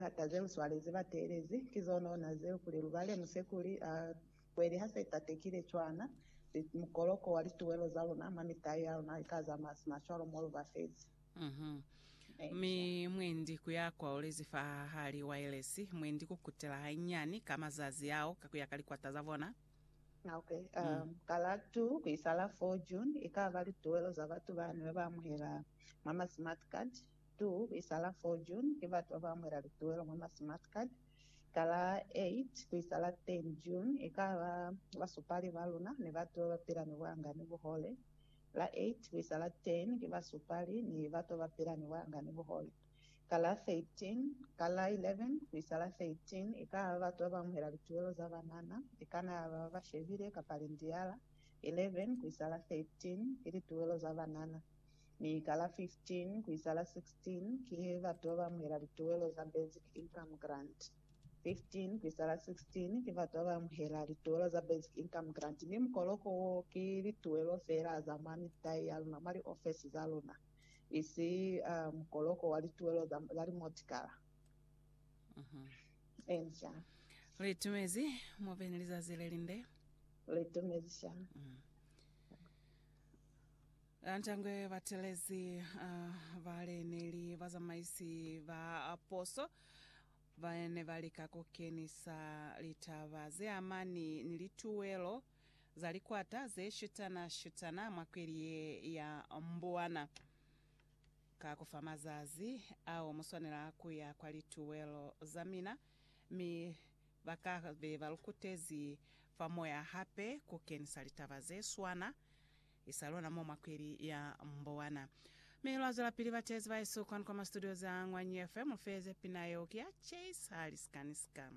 Lihata ze u swalezi ba teelezi, ki zon'ona zeo kuli lu bale musekuli a kweli ha se tatekile cwana li mukoloko wa lituwelo za luna, mwa mitai ya luna lika za masima cwalo mo lu ba fezi. Mi mwendi ku ya kwaulezi fa hali wa yelesi, mwendi ku kutela hanyinyani ka mazazi ao ka ku ya ka likwata za bona. Ok, ka la 2 ku isa la 4 June, i ka ba lituwelo za batu bani ba ba amuhela mwa ma smart card, Tu kuisala 4 June ki batu baba amuela lituwelo mwa ma smart card, kala 8 kuisala 10 June ikaba basupali ba luna ni batu baba pila ni buanga ni buhole, la 8 kuisala 10 ki basupali ni batu baba pila ni buanga ni buhole, kala 13 kala 11 kuisala 13 ikaba batu baba amuela lituwelo za banana, ikana yaba baba shebile kapa lindiala, 11 kuisala 13 ki lituwelo za banana. mi ka la 15 ku isa la 16 ki batu ba ba amuhela lituwelo za Basic Income Grant. 15 ku isa la 16 ki batu ba ba amuhela lituwelo za Basic Income Grant mi mukoloko wo ki lituwelo feela za mwa mitai ya luna mwa liofesi za luna, isi mukoloko wa lituwelo za limotikala. Eni sha. Li tumezi mwa beni lizazi le linde. Li tumezi sha. Ntangwe batelezi bale neli bazamaisi ba poso bane balika kukenisa litaba zeamani ni lituwelo za likwata zeshutana-shutana mwa kweli ye ya Mbwana. Ka kufa mazazi ao muswanela kuya kwa lituwelo zamina mi bakabe balukutezi fa moya hape kukenisa litaba zeswana. isa lona mo mwa kweli ya mbowana. Mi lwa zwelapili bateezi ba Yesu kwanu kwa ma studio za Ngwanyi FM, mu feeze pina yeo ki ya Chase Halisikaniska.